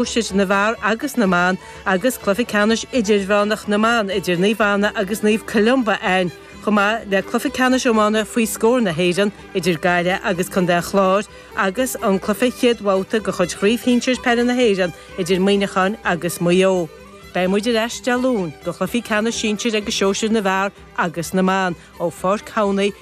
na bhfear agus na mban agus cluiche ceannais idirmheánach na mban idir Naomh Anna agus Naomh Columba ann, chomh maith le cluiche ceannais iomána faoi scór na hÉireann idir Gaillimh agus Contae an Chláir agus an cluiche chéad bhabhta de chuid Chraobh Shinsir Peile na hÉireann idir Muineachán agus Maigh Eo. Beidh muid ar ais Dé Luain do chluichí ceannais sinsir agus sóisir na bhfear agus na mban ó Pháirc Thamhnaigh,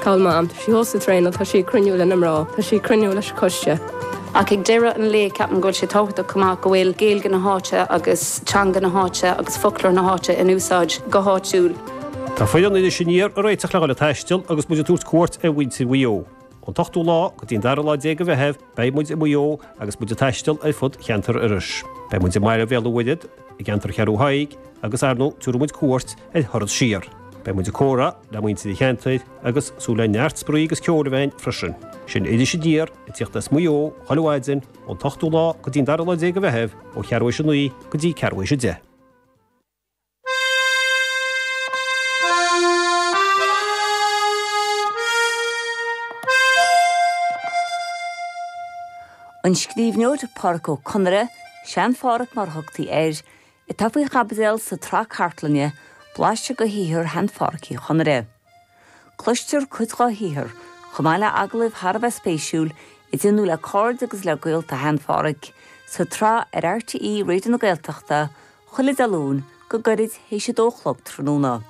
Cá bhfuil Mam, tá sí thuas ag traenáil nó tá sí ag cruinniú lena mná, tá sí ag cruinniú leis an coiste. Ach ag deireadh an lae, ceapaim go bhfuil sé tábhachtach chomh maith go bhfuil Gaeilge na háite agus teanga na háite agus foclóir na háite in úsáid go háitiúil. Tá foireann Iris Aniar ag réiteach le dhul ag taisteal agus muid ag tabhairt cuairt ar mhuintir Mhaigh Eo, ón t-ochtú lá go dtí an dara lá déag de Mheitheamh, Beidh muid i Maigh Eo agus muid ag taisteal ar fud cheantar Iorrais. Beidh muid i mBaile Bhéal an Mhuirthead, i gceantar Cheathrú Thaidhg agus, ar ndóigh, tabharfaidh muid cuairt ar Thuar Ard thiar. Beidh muid ag comhrá le muintir an cheantair agus súil le neart spraoi agus ceol amhráin freisin. Sin Iris Aniar ag tíocht as Maigh Eo chuile mhaidin, ón t-ochtú lá go dtí an dara lá déag de Mheitheamh, ó cheathrú éis a naoi go dtí ceathrú éis a deich. An scríbhneoir Pádraic Ó Conaire, Sean-Phádraic mar a thugtaí air, atá faoi chaibidil sa tsraith cartlainne Blaiseadh de shaothar Shean-Phádraic Uí Chonaire. Cloistear cuid dá shaothar, chomh maith le agallaimh thar a bheith spéisiúil, a déanadh le cairde agus le gaolta Shean Pháraic, sa tsraith ar RTÉ Raidio na Gaeltachta, chuile Dé Luain, go gairid théis a dó a chlog tráthnóna.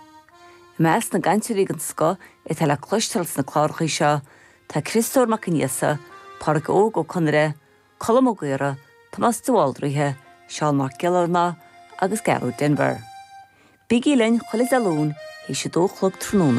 I measc na gcainteoirí den scoth atá le cloisteáil sna cláracha seo, tá Criostóir Mac Aonghusa, Páraic Óg Ó Conaire, Colm Ó Gaora, Tomás de Bhaldraithe, Seán Mac Giollarnáth agus Gearóid Denvir. Bígí linn chuile Dé Luain théis a dó a chlog tráthnóna.